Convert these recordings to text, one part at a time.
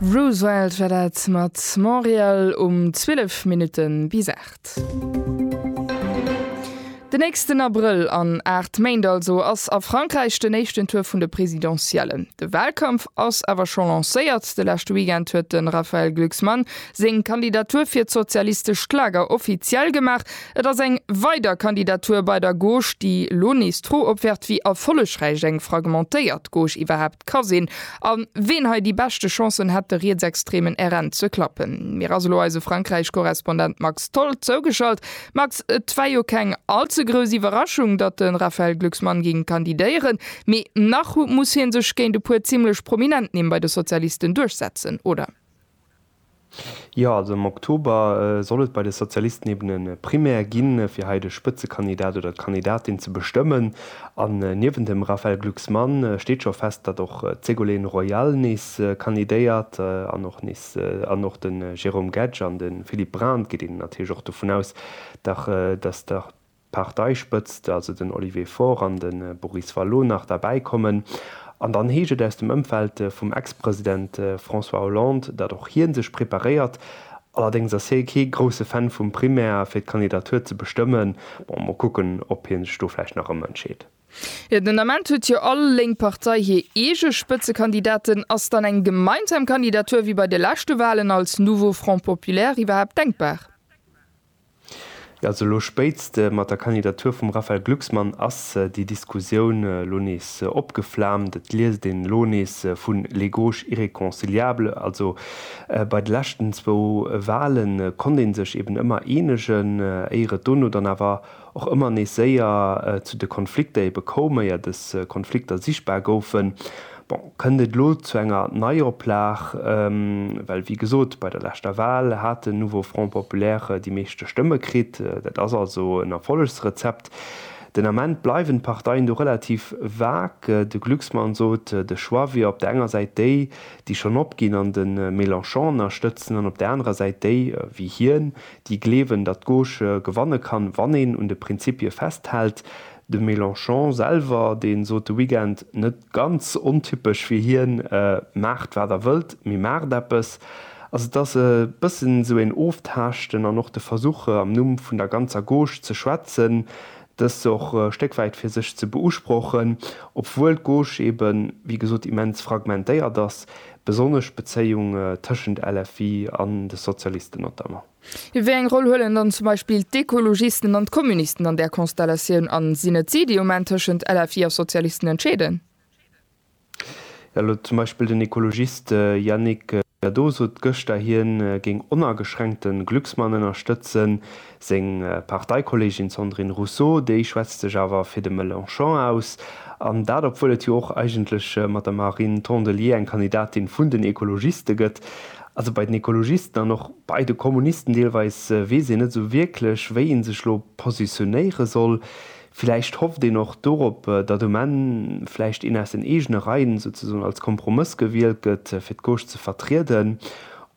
Roosevelt war dat mat Montréal um 12 Minutten bis 8. Den nächsten Abrëll, an 8 Méint also, ass a Frankräich den éischten Tour vun de Presidentiellen. De Wahlkampf ass awer scho lancéiert. De leschte Weekend huet de Raphaël Glucksmann seng Kandidatur fir d'sozialistescht Lager offiziell gemaach. Et ass eng weider Kandidatur bei der Gauche, déi lo nees d'Fro opwerft, wéi erfollegräich eng fragmentéiert Gauche iwwerhaapt ka sinn, a ween hei déi beschte Chancen hätt, de rietsextremen RN ze klappen. Mir ass elo eise Frankräich-Korrespondent Max Tholl zougeschalt. Max, et war jo keng all ze grouss Iwwerraschung, datt de Raphaël Glucksmann géing kandidéieren, mee nach muss hie sech géint e puer zimmlech prominent Nimm bei de Sozialisten duerchsetzen, oder? Jo, also am Oktober soll et bei de Sozialisten eben e Primaire ginn, fir hei de Spëtzekandidat oder d'Kandidatin ze bestëmmen. An niewent dem Raphaël Glucksmann steet scho fest, datt och d'Ségolène Royal nees kandidéiert an och nees an och de Jérôme Guedj an de Philippe Braun. Et geet een natierlech och dovun aus, datt Parteispëtzt, also den Olivier Faure an de Boris Vallaud nach derbäi kommen. An dann heescht et aus dem Ëmfeld vum Ex-President François Hollande, datt och hie sech preparéiert. Allerdéngs ass hie kee grousse Fan vum Primaire fir d'Kandidatur ze bestëmmen. Bon, mol kucken, ob hie sech do vläicht nach ëmentscheet. Jo, den Ament huet jo all lénk Partei hir eege Spëtzekandidaten. Ass dann eng gemeinsam Kandidatur wéi bei de leschte Walen als Nouveau Front Populaire iwwerhaapt denkbar? Also elo spéitst mat der Kandidatur vum Raphaël Glucksmann ass déi Diskussioun elo nees opgeflaamt. Et liest een elo nees vun les gauches irréconciliables. Also bei de leschten zwou Wale konnt ee sech eben ëmmer eenegen, éier et dono dann awer och ëmmer nees séier zu de Konflikter ebe koum, éier dës Konflikter sichtbar goufen. Bon, kënnt et elo zu enger Neioplag? Well, wéi gesot, bei der leschter Wal hat den Nouveau Front Populaire déi meeschte Stëmme kritt. Dat ass also en Erfollegsrezept. Den Ament bleiwen d'Parteien do relativ vage. De Glucksmann sot, de Choix wier op der enger Säit déi, déi schonn opginn an de Mélenchon ënnerstëtzen, an op der anerer Säit déi, wéi hien, déi gleewen, datt d'Gauche gewanne kann, wann een un de Prinzipie festhält. De Mélenchon selwer, dee sot de Weekend, net ganz ontypesch fir hien, Maacht wat der wëllt, mee maacht eppes. Also et ass e bëssen esou een Oftaaschten an och de Versuch, am Numm vun der ganzer Gauche ze schwätzen, dëst och e Stéck wäit fir sech ze beusprochen, obwuel d'Gauche eeben, wéi gesot, immens fragmentéiert ass. Besonnesch d'Bezéiung tëschent LFI an de Sozialisten notamment. Wéi eng Roll huelen dann zum Beispill d'Ekologisten an d'Kommunisten an där Konstellatioun a sinn et si, déi um Enn tëschent LFI a Sozialisten entscheeden? Jo, elo zum Beispill den Ekologist Yannick Jadot sot gëschter, hien géing onageschränkte Glücksmann ënnerstëtzen. Seng Parteikolleegin Sandrine Rousseau, déi schwätzt sech awer fir de Mélenchon aus. An dat obwuel et jo och eigentlech mat der Marine Tondelier eng Kandidatin vun den Ekologiste gëtt. Also bei den Ekologisten an och bei de Kommunisten deelweis weess een net esou wierklech, wéi ee sech elo positionéiere soll. Villäicht hofft een och dorop, datt um Enn vläicht een aus den eegene Reien souzesoen als Kompromëss gewielt gëtt, fir d'Gauche ze vertrieden.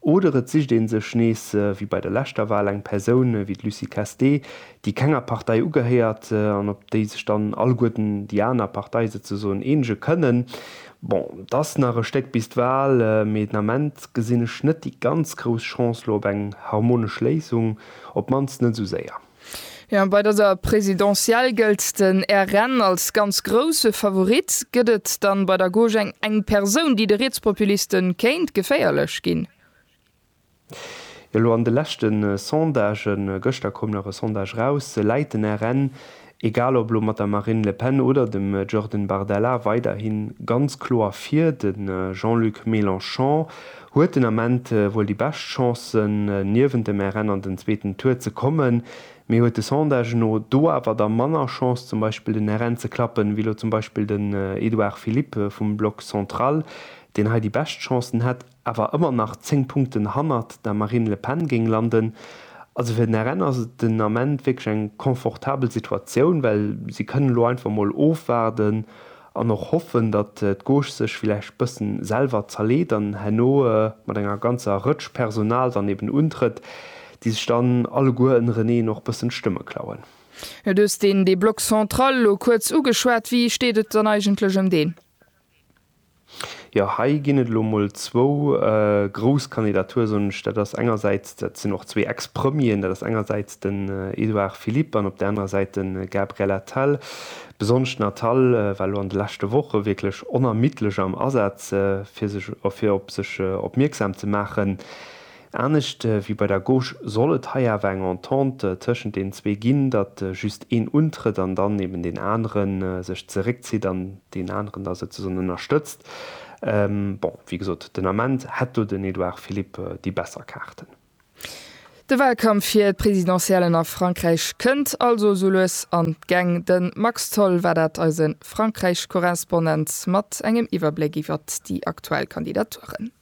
Oder et sicht ee sech nees, wéi bei der leschter Wal, eng Persoun wéi d'Lucie Castee, déi kenger Partei ugehéiert an op déi sech dann alleguerten déi aner Partei souzesoen eenege kënnen. Bon, et ass nach e Stéck bis d'Wal, mee den Ament gesinn ech net déi ganz grouss Chance lo op eng harmonesch Léisung, op d'mannst net esou séier. Jo, bei dëser Présidentielle gëllt den RN als ganz grousse Favorit. Gëtt et dann bei der Gauche eng eng Persoun, déi de Rietspopuliste kéint geféierlech ginn? Jo, elo an de leschte Sondagen, gëschter koum nach e Sondage raus, läit den RN, egal ob elo mat der Marine Le Pen oder dem Jordan Bardella, weiderhi ganz kloer vir. De Jean-Luc Mélenchon Huet den Ament wuel déi bescht Chancen, niewent dem RN an den zweeten Tour ze kommen, mee huet de Sondage no do awer da manner Chance, zum Beispill den RN ze klappen, wéi lo zum Beispill den Edouard Philippe vum Bloc central, deen hei déi bescht Chancen hätt, awer ëmmer nach 10 Punkten hannert der Marine Le Pen géing landen. Also fir den RN ass et den Ament wierklech eng confortabel Situatioun, well si kënnen elo einfach mol ofwaarden, An och hoffen, datt d'Gauche sech villäicht bëssen selwer zerleet an herno mat enger ganzer Rëtsch Personal dann eben untrëtt, déi sech dann alleguer ënnereneen och bëssen d'Stëmme klauen. Du hues deen dee Bloc central elo kuerz ugeschwat. Wéi steet et dann eigentlech ëm deen? Jo, hei ginn et elo mol zwou grouss Kandidature, soen ech. Dat ass engersäits, dat sinn och zwee Ex-Premieren, dat ass engersäits den Edouard Philippe an op där anerer Säit de Gabriel Attal. Besonnesch d'Natal war elo an de leschte Woche wierklech onermiddlech am Asaz, fir sech fir op sech opmierksam ze maachen. Anescht wéi bei der Gauche soll et hei awer eng Entente tëschent deenen zwee ginn, datt just een untrëtt an dann eben deen anere sech zeréckzitt an deen aneren da souzesoen ënnerstëtzt. Bon, wéi gesot, den Ament hätt do den Edouard Philippe déi besser Kaarten. De Wahlkampf fir d'Presidentiellen a Frankräich kënnt also sou lues an d'Gäng. De Max Tholl war dat, eise Frankräich-Korrespondent, mat engem Iwwerbléck iwwert déi aktuell Kandidaturen.